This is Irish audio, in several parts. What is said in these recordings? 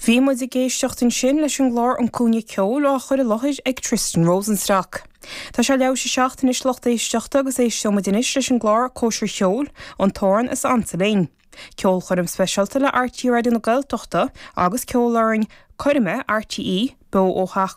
Bhí muid ag éisteacht ansin leis an gclár An Cúinne Ceoil á chur i láthair ag Tristan Rosenstock. Tá sé leathuair tar éis 7 anois lucht éisteachta agus éisteoidh muid anois leis an gclár Cóisir Cheoil, An tAmhrán is Ansa Linn. Ceolchoirm speisialta le RTÉ Raidió na Gaeltachta agus Ceolfhoireann Coirme RTÉ beo ó Theach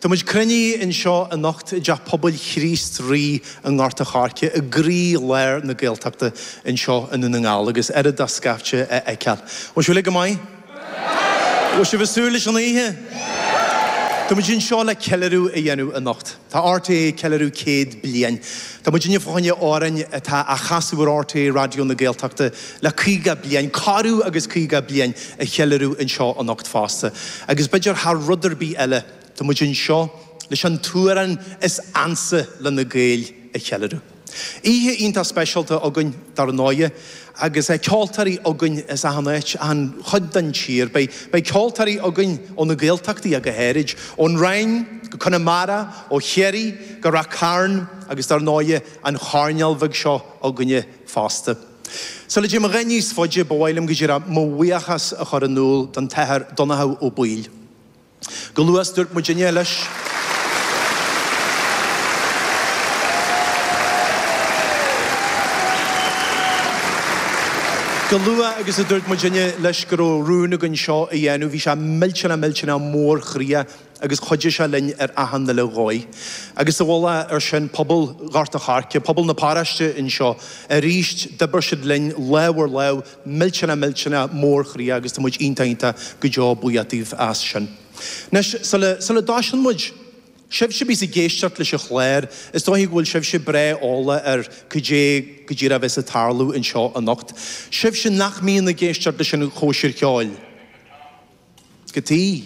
Tá muid cruinnithe anseo anocht i dTeach Pobail Chríost Rí i nGort a' Choirce i gcroí lár na Gaeltachta anseo i nDún na nGall agus ar dóigh scaifte a fheiceáil. An bhfuil sibh uilig go maith? An bhfuil sibh ag súil leis an oíche? Tá muid anseo le ceiliúradh a dhéanamh anocht. Tá RTÉ ag ceiliúradh céad bliain. Tá muidinne fá choinne amhráin atá á chasadh ar RTÉ Raidió na Gaeltachta le caoga bliain, corradh agus caoga bliain a cheiliúradh anseo anocht fosta, agus b'fhéidir thar rud ar bith eile, tá muid anseo leis an t-amhrán is ansa le na Gaeil a cheiliúradh. Oíche iontach speisialta againn dar ndóighe, agus ceoltóirí againn as achan áit, achan chuid den tír. Beidh ceoltóirí againn ó na Gaeltachtaí go háirid, ón Rinn go Conamara, ó Chiarraí go Rath Cairn, agus dar ndóighe an choirneál bheag seo againne, fosta. Sula dté muid a dhath níos faide, ba mhaith liom, go dearfa, mo bhuíochas a chur in iúl don tAthair Donnchadha Ó Baoill. Go, go luath agus a dúirt muidinne leis go raibh rún againn seo a dhéanamh, bhí sé millteanach millteanach mór-chroíoch. agus chuidigh sé linn ar achan uile dhóigh. Agus sa mhullach ar sin, pobal Ghort a' Choirce, pobal na paráiste anseo, arís, d'oibir siad linn lámh ar lámh, millteanach, millteanach mórchroíoch, agus tá muid iontach, iontach go deo buíoch daoibh as sin. Anois, sula, sula dtoiseann muid, sibhse a bhíos ag éisteacht leis an chlár, is dóiche go bhfuil sibhse breá eolach ar cad é go díreach a bheas ag tarlú anseo anocht, sibhse nach mbíonn ag éisteacht leis an chóisir cheoil. Go dtí.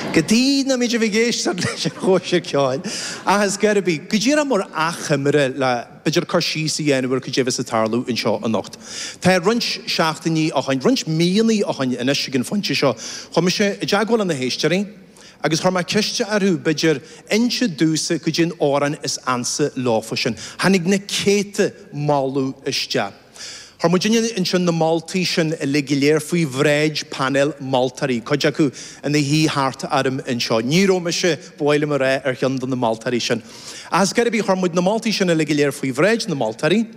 Go dtí nach mbíonn sibh ag éisteacht leis an chóisir ceoil. Ach is cé ar bith, go dtabharfaidh mé achoimre le b'fhéidir cur síos a dhéanamh ar cad é a bheas ag tarlú anseo anocht. So roinnt seachtainí ó shoin, roinnt míonna ó shoin anois ag an phointe seo, chuaigh mise i dteagmháil le na héisteoirí agus chuir mé ceist orthu b'fhéidir inse domhsa cad é an t-amhrán is ansa leofa sin. Tháinig na céadta moladh isteach. Chuir muidinne ansin na moltaí sin uilig go léir faoi bhráid painéal moltóirí, cuid acu ina suí thart orm anseo. Ní raibh mise, ba mhaith liom a rá, ar cheann de na moltóirí sin. Ach is cé ar bith, chuir muid na moltaí sin uilig go léir faoi bhráid na moltóirí.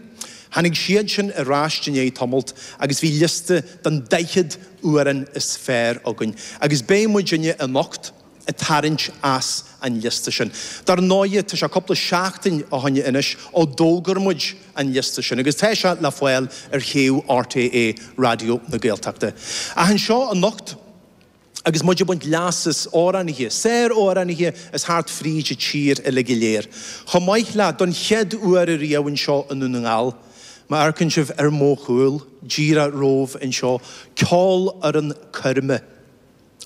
Tháinig siad sin ar ais i ndiaidh tamalt agus bhí liosta den daichead amhrán is fearr againn. Agus beidh muidinne anocht, a tharraingt as an liosta sin. Dar ndóighe, tá sé cupla seachtain ó shoin anois ó d'fhógair muid an liosta sin, agus tá sé le fáil ar shuíomh RTÉ Raidió na Gaeltachta. Ach anseo anocht, agus muid ag baint leas as amhránaithe, sár-amhránaithe as thart fríd an tír uilig go léir, chomh maith le, don chéad uair a riamh anseo i nDún na nGall, má amharcann sibh ar mo chúl, díreach romham anseo, Ceolfhoireann Coirme.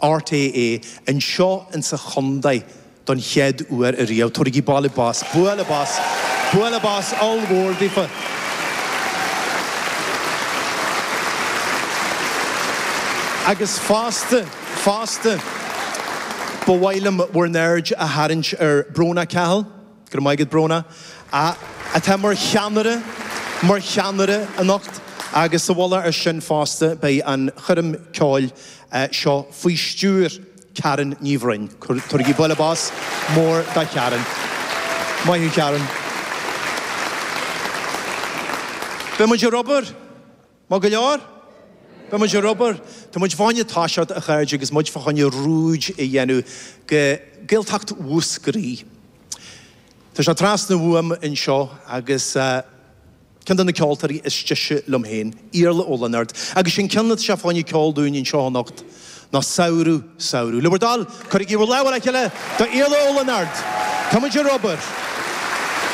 RTÉ anseo in sa chondae don chéad uair a riamh. Tabhairigí bualadh bos, bualadh bos, bualadh bos oll-mhór daofa. Agus fosta, fosta, ba mhaith liom bhur n-aird a tharraingt ar Brónagh Cahill. Go raibh maith agat, Bróna, atá mar cheannaire, mar cheannaire anocht. Agus sa mhullach ar sin fosta, beidh an choirm ceoil seo faoi stiúir Karen Ní Bhroin. Tabhairigí bualadh bos mór do Karen. Maith thú, Karen. Beidh muid ar obair! Maith go leor. Beidh muid ar obair. Tá muid fá choinne toiseacht, a chairde, agus muid fá choinne rúid a dhéanamh go Gaeltacht Mhúscraí. Tá sé trasna uaim anseo agus ceann de na ceoltóirí is deise liom féin, Iarla Ó Lionáird, agus an ceann atá sé fá choinne a cheol dúinn anseo anocht, ná Samhradh, Samhradh. Le bhur dtoil, cuirigí bhur lámha le chéile do Iarla Ó Lionáird. Tá muid ar obair.